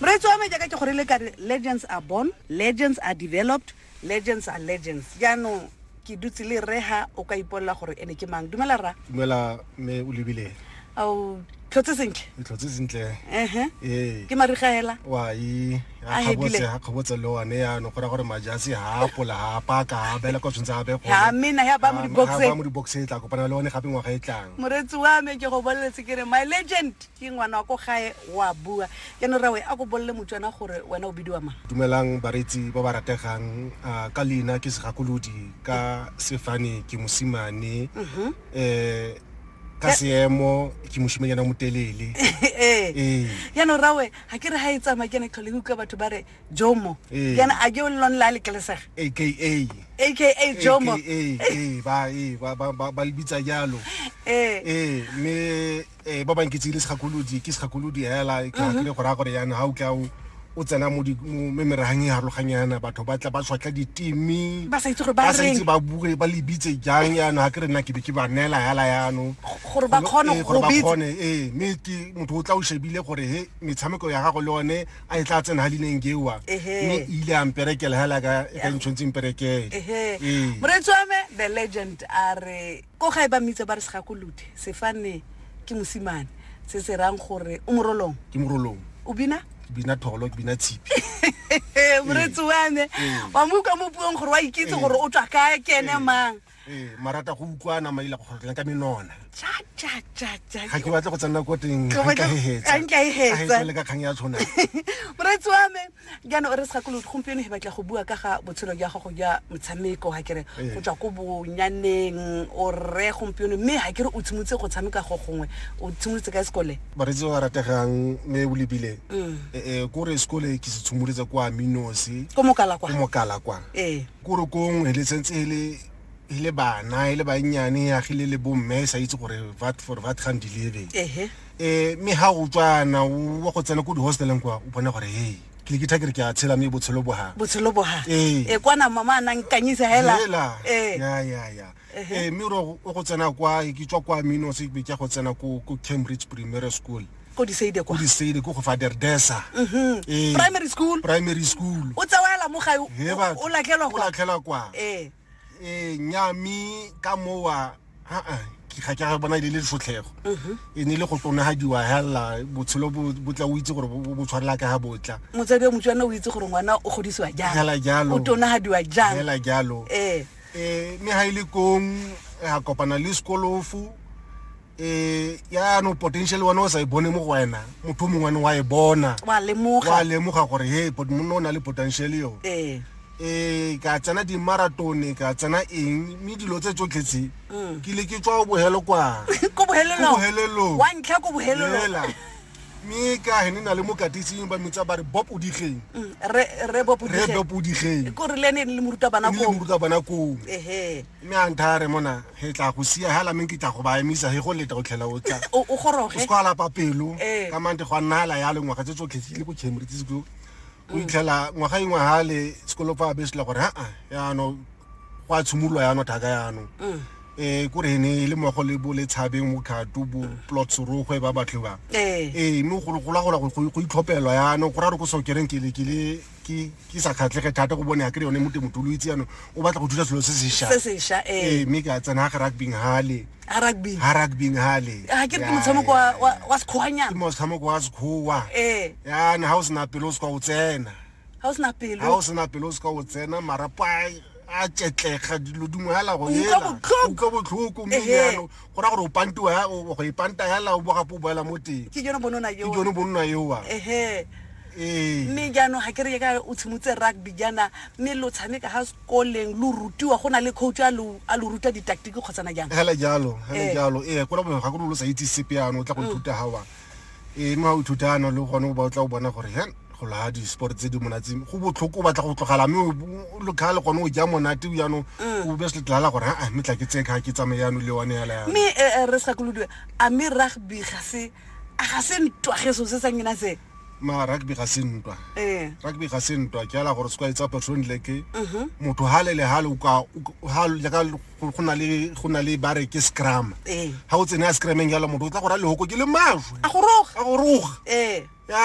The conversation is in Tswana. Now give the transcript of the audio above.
moreetsi wa me jaaka ke gore le kare legends are born legends are developed legends are legends jaanong ke dutse le rega o ka ipolela gore ene ke mang dumela ra dumela me o lebile ao tlhotse sentle tlhotse sentle ehe ee. ke marigaela wa e a khabotse a khabotse lo ane ya no gora gore majasi ha pola ha paka ha bela ko tshwntsa be go ha mina ya ba mo di boxe ba mo di boxe tla kopana le one gape ngwa ga e tlang moretsi wa me ke go boletse ke re my legend Ke ngwana wa ko gae, o a bua. Jaanong rrawe, a ko bolele Motswana gore wena o bidiwa mang. Dumelang bareetsi ba ba rategang, ka leina ke Segakolodi, ka sefane ke Mosimane, ka seemo ke Moshimanyana o Motelele. Ee. Jaanong rrawe, ga ke re ga e tsamaya ke ene tlhole ke utlwa batho ba re Jomo. Ee. Jaanong a ke o le lone le a letlelesega? AKA. AKA Jomo. AKA, ee, ba, ee, ba, ba, ba, ba le bitsa jalo. Ee. Ee, mme. eh ba bang ke tsile segakolodi ke segakolodi hela ke ha ke go ra gore yana ha o tla o o tsena mo me merahang e harologanyana batho ba tla ba tshwatla ditimi ba sa itse gore ba sa itse ba bue ba lebitse jang yana ha ke re nna ke be ke ba neela hela yano gore ba khone eh, gore ba khone eh me ke motho o tla o shebile gore he metshameko ya gago le one a e tla tsena ha lineng gewa me ile a mperekela hela ka e ka ntshontseng perekele eh moretsi wa me the legend are Ko gae ba mmitsa ba re Segakolodi, sefane ke mosimane, se se rang gore o morolong. Ke morolong. O bina? Ke bina tholo, ke bina tshipi. Moretsi wa me, wa mo utlwa mo puong gore wa ikitse gore o tswa ka kene mang. Ee, marata go utlwana maila go kgotlang ka menona. Cha cha cha cha. Ga ke batle go tsena ko teng. Ga nka e hetsa. Ga nka e hetsa. Ga e tsele ka kgang ya tshwana. Moretsi wa me, jaanong re sa kolodi gompieno he batla go bua ka ga botshelo jwa gago jwa motshameko ga kere eh. go tswa ko bonyaneng o rre gompieno mme ga kere o tshimotse go tshameka go gongwe o tshimolotse ka sekole baretsi ba rategang mme o lebile mm. eh, eh, kore sekole ke se tshimolotse kwa minosi ko mokala kwa ee kore kongwe le sentse e le e le bana e le bannyane e agile le bomme e sa itse gore vat for vat gandilebe ee mme ga o tswana wa go tsena ko di-hosteleng kwa o bona gore hey ke ke thakere ke a tshela mme botshelo bo ga botshelo bo ga ee e kwana mama a nang kanyisa hela hela ee ya ya ya ee mme o go tsena kwa ke tswa kwa mino se ke go tsena ko ko Cambridge Primary School ko di seide kwa di seide ko go fa derdesa mhm ee primary school primary school o tsawela mo ga o latlhelwa kwa latlhelwa kwa ee eh nya mi ka mowa ha a ke ga ke ga bona ile le tsotlhego mhm. e ne le go tsona ha diwa hela botshelo bo tla o itse gore bo tshwarela ka ha botla motsadi wa motswana o itse gore ngwana o godisiwa jang hela jalo o tona ha diwa jang hela jalo eh eh me ha ile kong a kopana le skolofu um yaanong potential one o sa e bone mo go wena motho mongwe ane wa e bona wa lemoga gore he monna o na le potential yo um ka tsena dimaratone ka tsena eng mme dilo tse tsotlhe tse mm. ke le ke tswa o bohelo kwantlha mme ka he ne na le mokatising ba mitsa ba re bob o digeng mm, re bob o digeng ko re le ne le moruta bana ko moruta bana ko ehe mme a ntha re mona he tla go sia ha la meng ke tla go ba emisa he go leta o tlhela o tla o goroge o skwala papelo eh. ka mante go nna la ya lengwa ga tse tsotlhe le go chemre tse go o itlhela ngwaga engwe ha le sekolo fa be sela gore aa yaanong go a tshimolola yaanong thaka yaanong um kore ne e le mogo le bo le tshabeng mo khato bo plot sorogwe ba batho ba ee mme go gola gola go itlhopelwa yaanong go ra re ko sokereng kele kele ke sa kgatlhege thata go bone ya kry yone mo temotho lo itse yaanong o batla go thusa selo se sesha ee mme ke a tsena ga rugbyng hale ha rugby ha rugby hale ha ke re ke motshameko wa wa wa sekgwanyana ke motshameko wa sekgowa eh ya na ha o sena pelo o se ka o tsena ha o sena pelo ha o sena pelo o se ka o tsena mara pa a tšetlega dilo dingwe hela go elatloka botlhoko mme jalo go ra gore o pantiwa go e panta hela o bogape o boela mo teng ke jone bonona eoa ee. mme jaanong ga ke re ka o tshimotse rugby jaana mme lo tshameka ko leng lo rutiwa go na le coach a lo a lo ruta ditaktiki kgotsana jang hela jalo hela Eh. jalo ee kora bongwe ga go lo sa itse sepe ano o tla go ithuta ga wa ee mme ga o ithuta ano le gone o ba o tla o bona gore he go laga di-sport tse di monatse go botlhoko o batla go tlogala mme o- o- lo kgale gone o ja monate o yanong o be se tlala gore aa mme tla ke tsee kga ke tsamaye yano le one yala yano mme eh, eh, re sa kolodiwe a mme rugby ga se a ga se ntwa geso se sa nyena se ma rugby ga se ntwa eh. rugby ga se ntwa ke ala gore sekwae tsa person leke mhm. motho ha le le ha le ka ha le ka go na le go na le bare ke scrum eh. ha o tsene a scrumeng ya le motho o tla go ra le hoko ke le mashwe a go roga a go roga eh ya